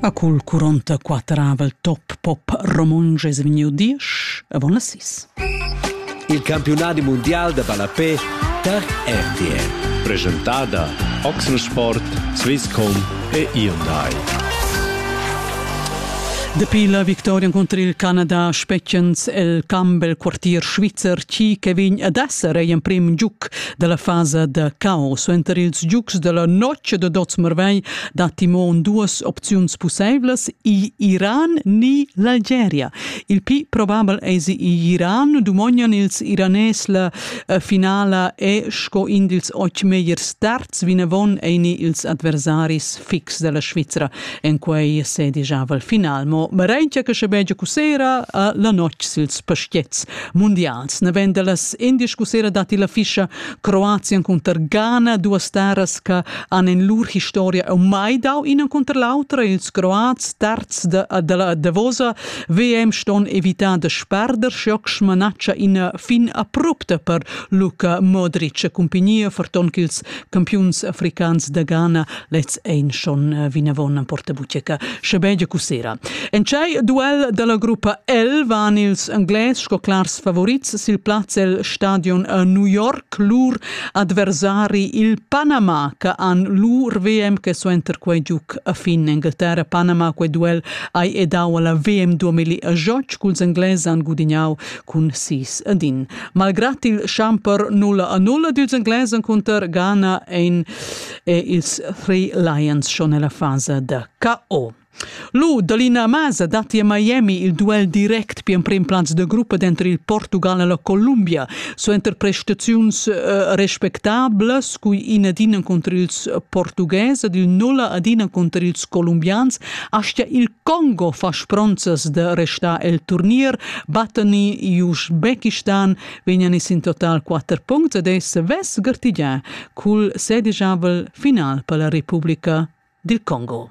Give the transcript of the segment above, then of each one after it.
A cul 44avel top pop romontsch es vegniu diesch e bona sis. Il campiunadi mundial da ballapé tar RTL. Presentada Oxensport, Swisscom e Hyundai. Dapi la victoria contro il Canada spetgens el Campbell quartier svizzer chi che vegn ad esser ei emprim giuc dalla fasa da caos. Suenter ils giugs della notg de Dots Marvei dat Timon duas opziuns pusseivlas, i Iran ni l'Algeria. Il pli probabel eis i Iran, dumognan ils Iranes la eh, finala e sco in dils oc megliers starts vinavon eini ils adversaris fix della Svizzera en quei sedijavel final. Mo Marentia che sche begia cusera eh, la notg sils pastiets. mundials. Naven dallas indies cusera datti la fischa Croatien cunter Ghana, duas terras che han in lur historia o mai dau ina cunter l'autra. Ils Croats terz de, della Davosa VM ston evitar de sperder schoc smanaccia ina fin abrupta per Luka Modric e cumpagnia ferton ch'ils campiuns africans de Ghana lez ein schon eh, vinavon en portabucca, sche cu sera. En tschei duel della gruppa L van ils Englais sco clars favorits sil plaz el stadion a New York lur adversari il Panama che han lur VM che suenter quei giuc a fin Inghilterra Panama quei duel ai edau alla VM 2018 culs Englais han gudignau cun 6 ad in. Malgrat il Schamper 0 a 0 dils Englais cunter Ghana ein e ils Three Lions schon nella fase da KO. Lu dall'ina masa datti a Miami il duel direct per emprim plaz de gruppa dentro il Portugal e la Columbia, suenter prestaziuns eh, respectablas, cui in ad ina contro ils portughes ed il nulla ad ina contro ils colombians, astia il Congo fa spronzas de restar el turnier, battani Uzbekistan vegnan ins in total quatter puncts ed ei savess gartigiar cul sedigiavel final per la Republica dil Congo.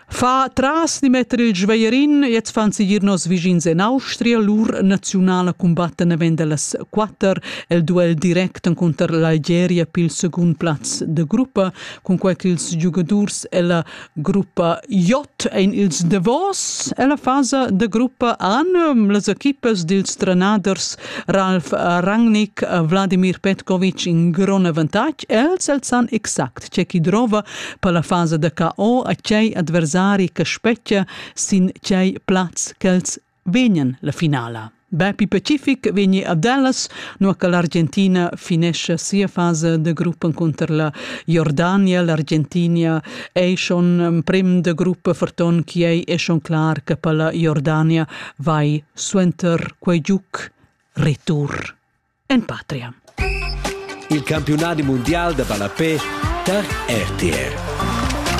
Fa tras di metter il Schweierin, jetzt fan sie hier nos vischins in Austria, lur nationala combatten venda las quatter el duel direct contro l'Algeria pil secund plaz de gruppa, con quei ch'ils giugadurs ella Gruppa J ein ils davos ella fasa da gruppa an. Las equipas dils trenaders Ralf Rangnick, Vladimir Petkovic in grond avantatg. Els els san exact ce chi drova per la fasa da KO a tgei adversari che spetga sin tgei plaz ch'els vegnan la finala. Bapi Pacific vegni a Dallas, nua che l'Argentina finesce sia fase de gruppo contro la Jordania, l'Argentina è schon um, prim de gruppo ferton che ei è schon clar che per la Jordania vai suenter quei giuc retur en patria. Il campionat mondial de balapè tar RTR.